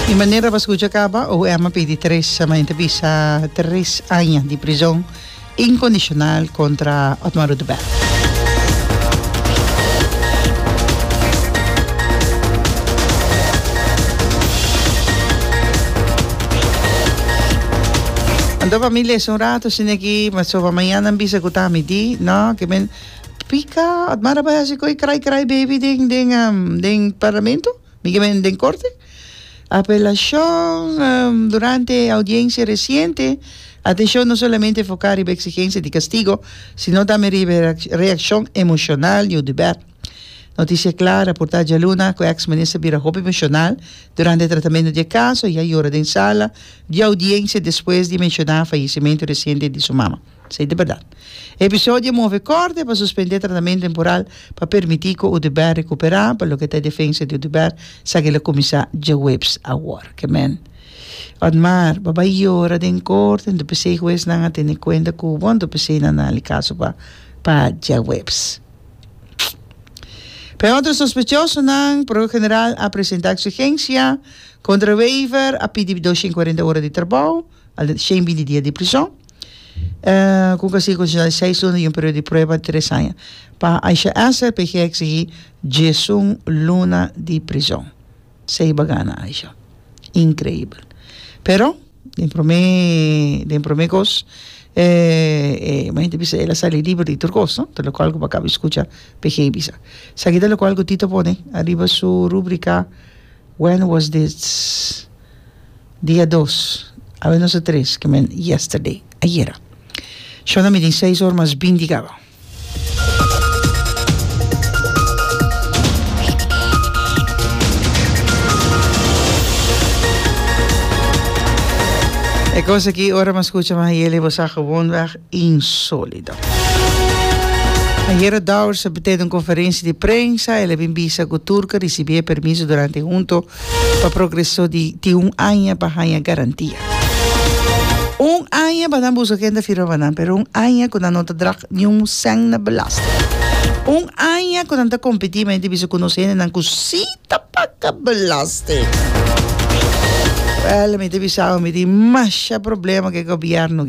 Di manera pa scucha caba, OM a pidi Teresa, ma enta bisa tres aña di prison incondicional contra Otmar Oduber. Anto familia esun rato sindi aki, ma so pa mañana a bisa cu ta midi, no, kiben. Pika ot mara bai hasi koe krai krai baby den den um, den parlamento, mi ke men den korte. Apelashon um, durante e audiensia resiente atenshon no solamente foká riba eksigensia di kastigo sino tambe riba e reakshon emoshonal di Oduber. Notisia Kla raportá djaluna ku èks minister bira hopi emoshonal durante e tratamento di e kaso i a yora den sala di audiensia despues di menshoná fayesimentu resiente di su mama. Esei ta bèrdat. E episodio a move kòrte pa suspendé tratamento temporal pa permití ku Udebert rekuperá, pa loke ta e defensa di Udebert sa ku el a kuminsá djaweps awor. Kemen. Otmar, Bo bai yora den kòrte, anto p'esei huesnan a tene kuenta ku bo, anto p'esei nan a dal e kaso pa pa djaweps. P'e otro sospechosonan, Prokuror General a presentá eksigensia kontra Wever, a pidi dos shen kuarenta ora di trabou. Al shen bini dia di prison. E ku ka sigue condicional di seis luna y un periodo di prueba di tres aña. Pa Aisha Esther PG a exigi diesun luna di prison. Sa iba gana Aisha. Increíble. Pero den prome den prome cos e mi hende bisa el a sali liber di tur cos no. Ta locual cu bo a caba di scucha PG bisa. Esaki ta locual cu Tito pone ariba su rubrica When was this? Dia dos, awe nos a tres, ke men yesterday, ayera. Shon a midin seis or mas bin di gaba. E kos aki ora mas kucha mas yele bo sa gewonweg insolido. Ayera Dowers a tene un konferensi di prensa, el a bin bisa ku Turk a risibí e permiso durante hunto pa progreso di tin un aña pa haña garantia. Un aña pa nan buso kende firma pa nan, pero un aña ku nan no ta drag niun sèn na belasting. Un aña ku nan ta kompetí mente bisa ku nos hendenan ku sí ta paga belasting. Wèl, mi ta bisau, mi tin masha problema ku e gobièrnu.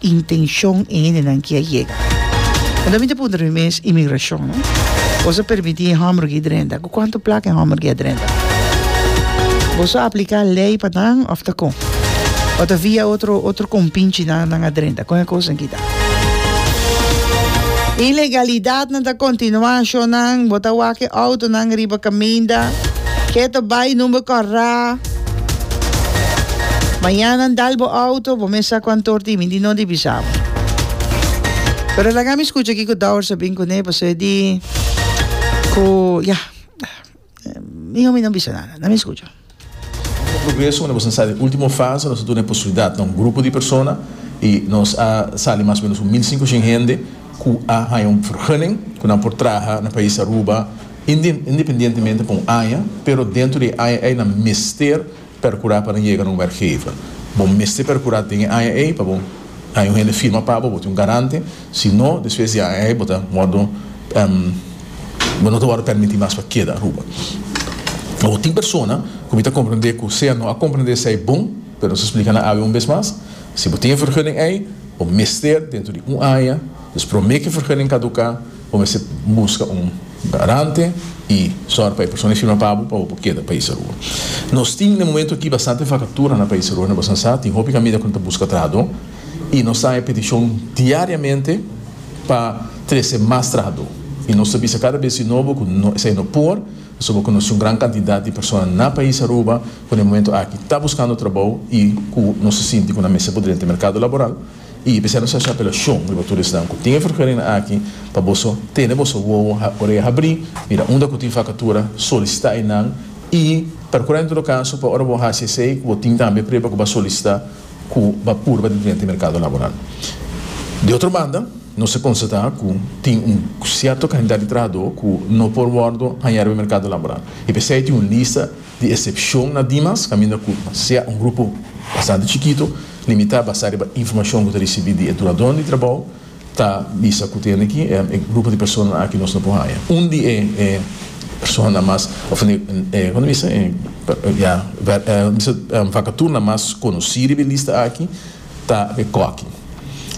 intenshon e hendenan ki a yega. Anto mi ta puntra mi mes, Imigrashon, no? Bos a permití e hòmber ki drenta? Ku kuantu plaka e hòmber ki a drenta? Bos a apliká lei pa nan òf ta kon? Òf ta via otro, otro kompinchi nan, nan a drenta? Kon e kosnan ki ta? Ilegalidatnan ta kontinuá, shonnan. Bo ta wak e outonan riba kaminda. Keto bai, number kòrá. Mañana dal bo auto, bo mes sa cu antor di mi di no di bisa bo. Pero laga mi scucha kico Dours a bin cune pasobra e di cu ya miho mi no bisa nada. Na mi scucha. Con progreso cu nos a sa den ultimo fase nos a duna e posibilidad na un grupo di persona y nos a sali mas o menos un mil cinco cien hende cu a haya un vergunning cu nan por traha na pais Aruba. independientemente pa un aña, pero dentro di e aña ei nan mester percura pa nan yega na un werkgever. Bo mester percura den e aña ei pa bo haña un hende firma pa bo, bo tin un garante, si no despues di e aña ei bo ta wordo, bo no ta wordo permiti mas pa keda Aruba. Awor tin persona cu mi ta comprende cu sea no a comprende esei bon, pero nos a splica nan awe un bes mas, si bo tin e vergunning ei, bo mester dentro di un aña, dus prome cu e vergunning caduca, Bo mester buska un garante i sòru pa e persona firma pa bo pa bo por keda Pais Aruba. Nos tin den momentu aki bastante fakatura na Pais Aruba, na Boston Sa. Tin hopi kamida ku no ta buska trahadó i nos ta haña petishon diariamente pa trese mas trahadó. I nos ta bisa kada bes di nobo ku no esei no por pasobra ku nos tin un gran kantidat di persona na Pais Aruba ku den momentu aki ta buskando trabou i ku nos ta sinti ku nan mester por drenta e merkado laboral. Y e bisa nos haci apelacion riba tur esnan cu tin e vergadering aki pa boso tene boso wowo oreha habrí, mira unda cu tin vacatura, solicita enan y percura en todo caso pa ora bo haci esey cu bo tin tambe preba cu bo a solicita cu bo a purba den drenta e mercado laboral. De otro banda, nos a constata cu tin un cierto cantidad di trahador cu no por wordo haña riba e mercado laboral. E p'esey tin un lista. di esepshon na dimas kaminda ku sea un grupo bastante chikito, limitá basá riba informashon ku ta risibí di e dunadónan di trabou, ta bisa ku tene ki e grupo di personanan aki nos no por haña. Un di e personanan mas, òf e, kon ta bisa, e, ya, vakaturnan mas konosí riba e lista aki Ta e kòki.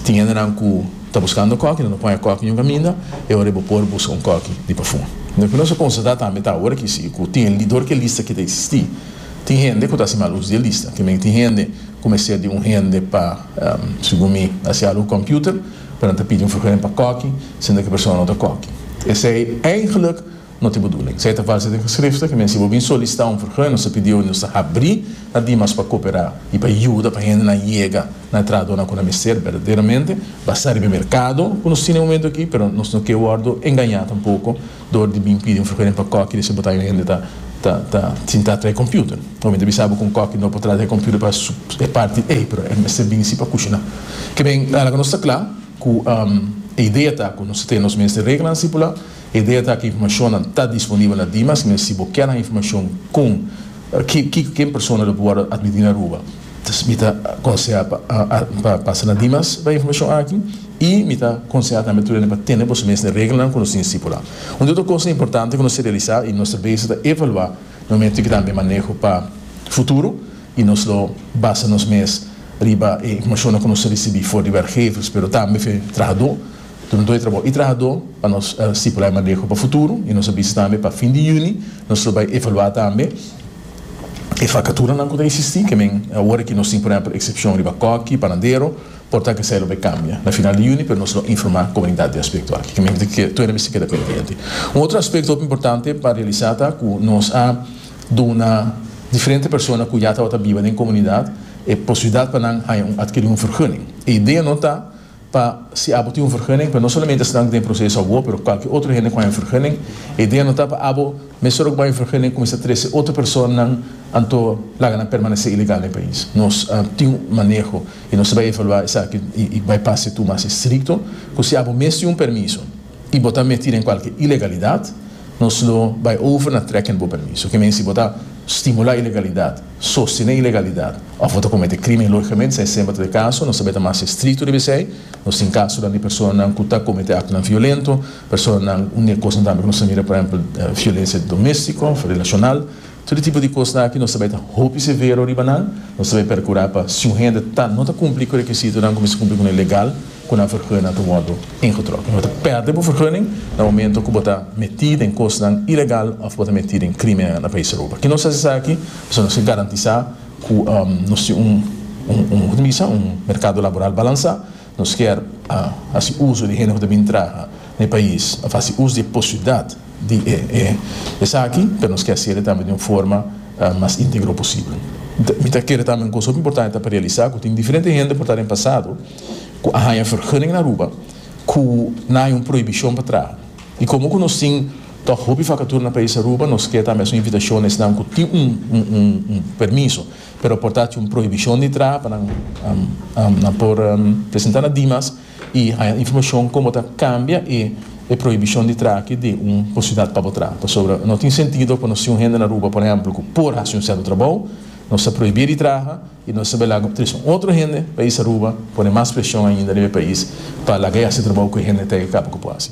Tin hendenan ku ta buskando kòki, nan ta pon e kòki in un kaminda, e ora ei bo por buska un kòki di pafùm. Lo ku nos a konstatá tambe ta awor aki si ku tin lidor ku e lista ke ta eksistí. Tin hende ku ta hasi mal uso di e lista. Te mester tin hende ku mester di un hende pa, segun mi, hasi algu ku kòmpiuter, pa nan ta pidi un vergunning pa kòki, sinda ku e persona no ta kòki. Esei, eigentlik. no tin buduling. Esei ta falsa den Geschriften, ke mester bo bin solisitá un vergun, nos ta pidi oe nos ta habrí na dimas pa koperá i pa yuda pa hendenan yega na e trahadonan ku nan mester berdaderamente, basá riba e merkado ku nos tin e momentu akí, pero nos no ke wòrdu engañá tampoko dor di bin pidi un vergun pa kòki di e sebotá yon hende ta ta ta sintá tra e kòmpiuter. Oe mi ta bisa bo kon kòki no por trata e kòmpiuter pa su e parti ei, pero e mester bin sí pa kushiná. Ke men, laga nos ta kla ku e idea ta ku nos ta tene nos mester reglanan stipulá E data aki informashonnan ta disponibel na Dimas, men si bo ker nan informashon kon kiko ken persona lo por wòrdu atmití na Aruba, mi ta konsehá pa pasa na Dimas pa e informashon aki i mi ta konsehá tambe tur ende pa tene boso mes e regelnan ku nos tin stipulá. Un di otro kos importante ku nos ta realisá i nos ta bese ta evaluá na momentu ki tambe maneho pa futuro i nos lo basa nos mes riba e informashonnan ku nos a risibí for di wèrkgevers pero tambe for di trahadó, Tur anto di trabou y trahadó pa nos stipula e maneho pa futuro y nos a bisa tambe pa fin di juni nos lo bay evalua tambe e vacaturanan cu ta existi, ke men awor aki nos tin por ehempel excepcion riba cocky, panadero, por ta kesey lo bay cambia na final di juni pero nos lo informa comunidad di aspecto aki, ke men tueda mester keda pendiente. Un otro aspecto hopi importante pa realisa ta cu nos a duna diferente persona cu ya tabata biba den comunidad e posibilidad pa nan haya un adkeri un vergunning. E idea no ta. Pa si abo tin un vergunning pa no solamente estudantenan ku ta den proseso awo pero kualkier otro hende ku haña vergunning, e idea no ta pa abo mes ora ku bo haña vergunning kuminsá trese otro personanan anto laga nan permanesé ilegal den e pais. Nos tin un maneho i nos ta bai evaluá esaki i bai pasa e tur mas estrikto ku si abo mes tin un permiso. y bo ta meti den cualke ilegalidad, nos lo bay over na trekken bo permiso. Kimen si bo ta stimula ilegalidad, sostene ilegalidad of bo ta comete crimen, logicamente esey semper ta e caso, nos ta bay ta mas estricto riba esey. Nos tin casonan di personanan cu ta comete actonan violento, personanan, un di e cosnan tambe cu nos ta mira, por ehempel, violencia domestico of relacional. Tur e tipo di kosnan aki nos ta bai ta hopi severo riba nan, nos ta bai perkurá pa si un hende ta no ta kumpli ku rekisitonan ku mester kumpli ku nan legal, ku nan fergunnan ta wòrdu ingetròk. Bo ta pèrdè bo fergunning na momentu ku bo ta metí den kosnan ilegal òf bo ta metí den krímen na Pais Europa. Ke nos hasi esaki? Pasobra nos ke garantisá ku nos tin un, un, un, un, merkado laboral balansá. Nos kier a hasi uso di hende ku ta bin traha na e pais, of hasi uso di e posibilidat di e esaki, pero nos ke hasi el tambe di un forma mas integro posibel. Mi ta kere tambe un kos hopi importante ta pa realisa ku tin diferente hende por ta den pasado ku a haña fergunning na Aruba ku nan haña un prohibishon pa traha. I komo ku nos tin tòg hopi vakatura na pais Aruba, nos ke tambe hasi un invitashon na esnan ku tin un permiso, pero por ta cu un prohibicion di traha pa nan nan por presenta na Dimas y haya informacion con bo ta cambia e prohibicion di traha aki den un posibilidad pa bo traha pasobra no tin sentido pa nos tin un hende na Aruba por ehemplo cu por haci un cierto trabou nos ta prohibia di traha y nos ta bela tres un otro hende pais Aruba pone mas presion ainda riba e pais pa laga e haci trabou cu e hende ta e caba cu por haci.